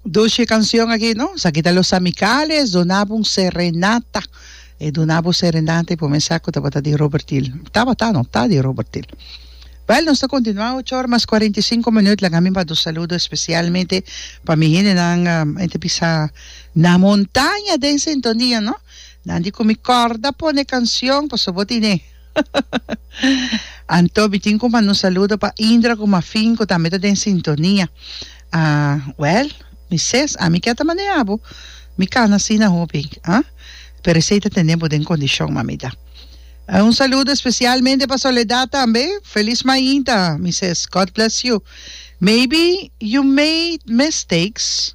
Dulce canción aki no esaki ta los amicales dunabo un serenata e dunabo serenata y por mí sa cu tabata di Robertil tabata no ta di Robertil wel nos ta continua ocho ora mas cuarenta y cinco minut laga mi manda un saludo especialmente pa mi gentenan e ta bisa na montaña den sintonia no nan di cu mi corda pone cancion pasobra bo tine Anto bitin ku mando un saludo pa Indra ku Mafin ku tambe ta den sintonia. Wèl, mi ses, ami ke ta manea bo. Mi kana asina hopi, a? Pero esei ta tene bo den kondishon, mamita. Un saludo espesialmente pa Soledad tambe. Felis mainta, mi ses. God bless you. Maybe you made mistakes.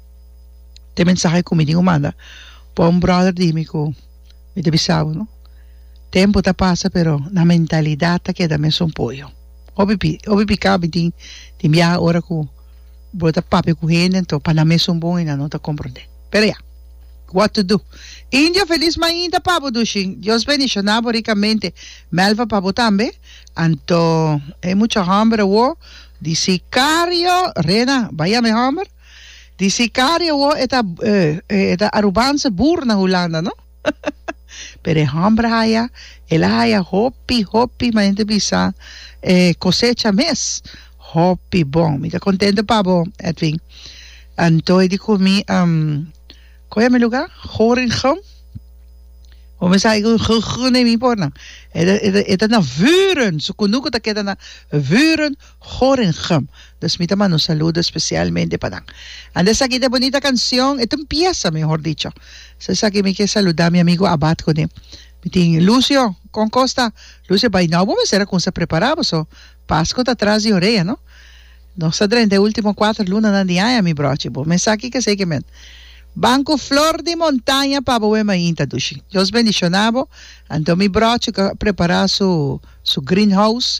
te mensahe ku mi tin ku manda pa un brother di mi ku mi ta bisa bo no tempu ta pasa pero nan mentalidat ta keda mesun poyo hopi pi hopi pika mi tin tin biaha ora ku bo ta papia ku hende anto pa nan mesun bon i nan no ta komprondé pero ya what to do India felis mainta pa bo dushi Dios bendishona bo rikamente Melfa pa bo tambe anto e mucha hòmber awor di Sikario Rena bai ya mi hòmber. Di sicario wo e ta eh e ta Arubanse boer na Hulanda no pero e homber haya el a haya hopi hopi ma hende bisa e cosecha mes hopi bon mi ta contento pa bo Edwin antoy di cu mi am con yami lugar Gorinchem bo mi sa cu Gorinchem mi por nan e ta e ta na Vuren su cunuco ta keda na Vuren Gorinchem. Dus mi ta manda un saludo especialmente pa nan. Ande esaki ta e bonita cancion, e ta un pieza mehor dicho. So esaki mi kier saluda mi amigo Abad cune. Mi tin Lucio con Costa. Lucio bay now bo mester a cuminsa prepara bo so Pasco ta tras di orea no. Nos ta drenta e ultimo cuater lunanan di aña mi brochi. Bo mes sa kico esey kimen. Ban cu flor di montaña pa bo wem ainta dushi. Dios bendiciona bo. Anto mi brochi cu a prepara su su green house.